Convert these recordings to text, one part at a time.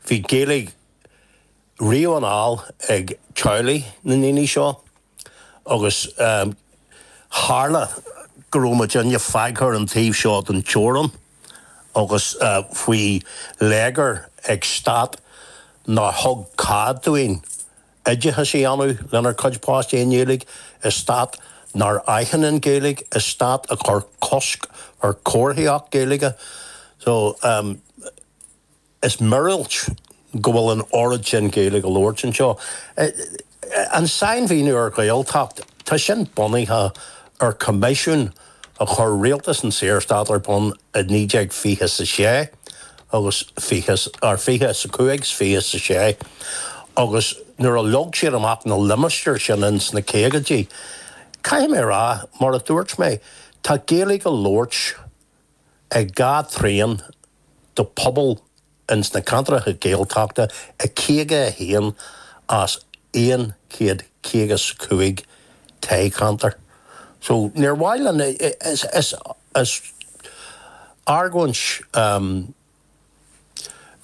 Bhí Gaeilge riamh anall ag teaghlaigh na ndaoine seo agus tharla go raibh muidinne fágtha ar an taobh seo den teorann agus faoi léigear ag stát nár thug cead dúinn oideachas a dhéanamh lenár gcuid páistí i nGaeilge i stát nár aithin an Ghaeilge, i stát a chuir cosc ar chomharthaíocht Ghaeilge. So, em, is míorúilt go bhfuil an oiread sin Gaeilge á labhairt anseo. An sainmhíniú ar Ghaeltacht, tá sin bunaithe ar choimisiún a chuir rialtas an tSaorstáit ar bun i 1926 agus 20 ar 25 's 26 agus nuair a leag siad amach na limistéir sin ins na caogaidí, caithfidh mé a rá, mar a dúirt mé, tá Gaeilge á labhairt ag dhá thrian de phobal ins na ceantracha Gaeltachta i 51 as 100 caoga 's cúig toghcheantar. So níor mhaith linn, is argóint,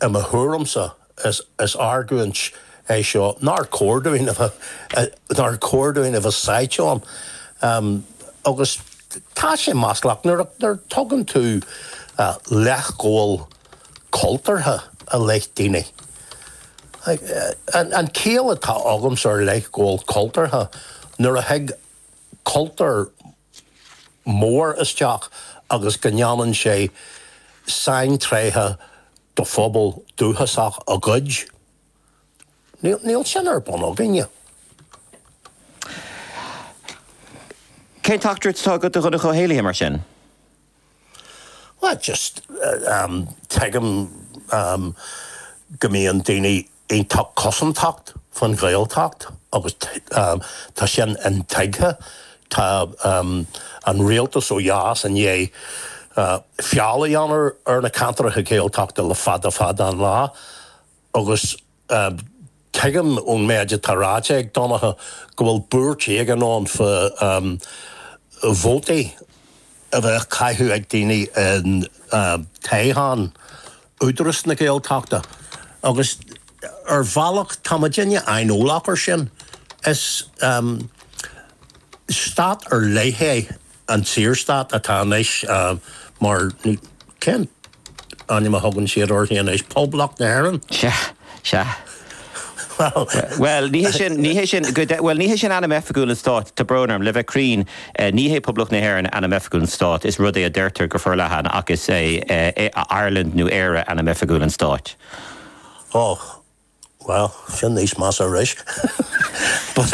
i mo thuairimse, is argóint é seo nár chóir dúinn a bheith, nár chóir dúinn a bheith sáite ann. Agus tá sé maslach nuair a thugann tú leithghabháil chultúrtha i leith daoine. An chiall atá agamsa ar leithghabháil chultúrtha, nuair a thig cultúr mór isteach agus go ndéanann sé saintréithe de phobal dúchasach a ghoid. Níl sin ar bun againne. Cén teachtaireacht atá agat do Dhonncha Ó hÉallaithe, mar sin? Well, just tuigim go mbíonn daoine iontach cosantach faoin Ghaeltacht agus tá sin intuigthe. Tá an rialtas ó dheas i ndiaidh feall a dhéanamh ar na ceantracha Gaeltachta le fada fada an lá. Agus tuigim ón méid atá ráite ag Donncha go bhfuil buairt éigin ann fá vótaí a bheith á gcaitheamh ag daoine i dtoghchán Údaras na Gaeltachta agus ar bhealach tá muidinne aineolach air sin. Is stát ar leith é an Saorstát atá anois mar, cén ainm a thugann siad uirthi anois, Poblacht na hÉireann? Sea, sea. Bhuel, ní hé sin, bhuel, ní hé sin ainm oifigiúil an stáit, tá brón orm, le bheith cruinn, ní hé Poblacht na hÉireann ainm oifigiúil an stáit, is rud é a deirtear go forleathan, ach is é Ireland nó Éire ainm oifigiúil an stáit. Ó! Bhuel, sin níos measa arís. But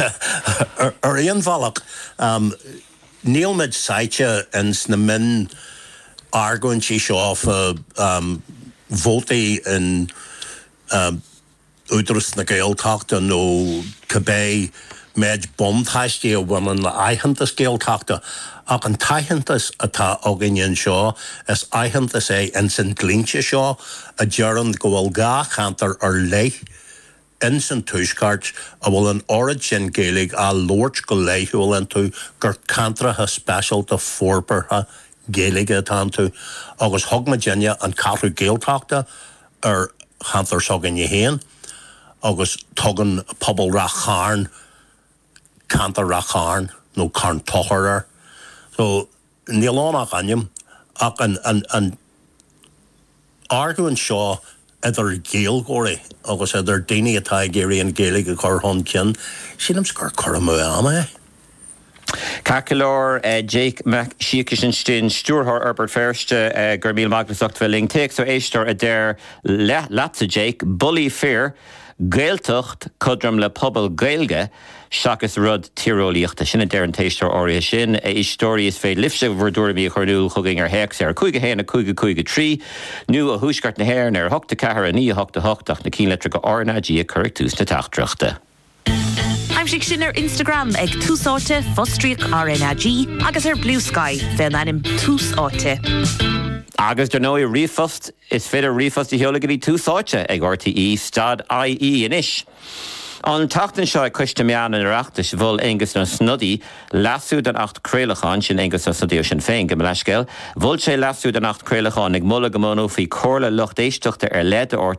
ar aon bhealach, níl muid sáite ins na mionargóintí seo fá vótaí in Údaras na Gaeltachta nó cibé, Méid buntáistí a bhaineann le haitheantas Gaeltachta, ach an t-aitheantas atá againne anseo, is aitheantas é ins an dlínse seo a deireann go bhfuil dhá cheantar ar leith ins an Tuaisceart a bhfuil an oiread sin Gaeilge á labhairt go laethúil iontu gur ceantracha speisialta forbartha Gaeilge atá iontu agus thug muidinne an Cheathrú Ghaeltachta ar cheantar s'againne féin. agus tugann pobal An Chairn ceantar An Chairn nó Carn Tóchair air. So níl ann ach ainm, ach an argóint seo idir Ghaeilgeoirí agus idir daoine atá ag iarraidh an Ghaeilge a chur chun cinn, sílimse gur cur amú ama é. Ceart go leor, Jake Mac Siacais ansin, Stiúrthóir Fhorbairt Feirste, go raibh míle maith agat as ucht bheith linn. Téacs ó éisteoir a deir leatsa, Jake, Bullaí fir, Gaeltacht cothrom le pobal Gaeilge seachas rud tíreolaíochta. Sin a deir an t-éisteoir áirithe sin. A Éisteoirí, is féidir libhse bhur dtuairimí a chur in iúl chugainn ar théacs ar 5 1 5 5 3 nó ó Thuaisceart na hÉireann ar 8 4 9 8 8 ach na ceannlitreacha RnaG a chur ag tús na teachtaireachta. Aimsigh sinn ar Instagram ag Tús Áite, fostríoc RnaG, agus ar Bluesky fén ainm Tús Áite. Agus dar ndóigh, ríomhphost, is féidir ríomhphost a sheoladh go dtí Tús Áite ag rte stad IE anois. An tseachtain seo ag Coiste Meán an Oireachtais mhol Aengus Ó Snodaigh leasú don Acht Craolacháin, sin Aengus Ó Snodaigh ó Shinn Féin, gabh mo leithscéal, mhol sé leasú don Acht Craolacháin ag moladh go mbunófaí Comhairle Lucht Éisteachta ar leith do rte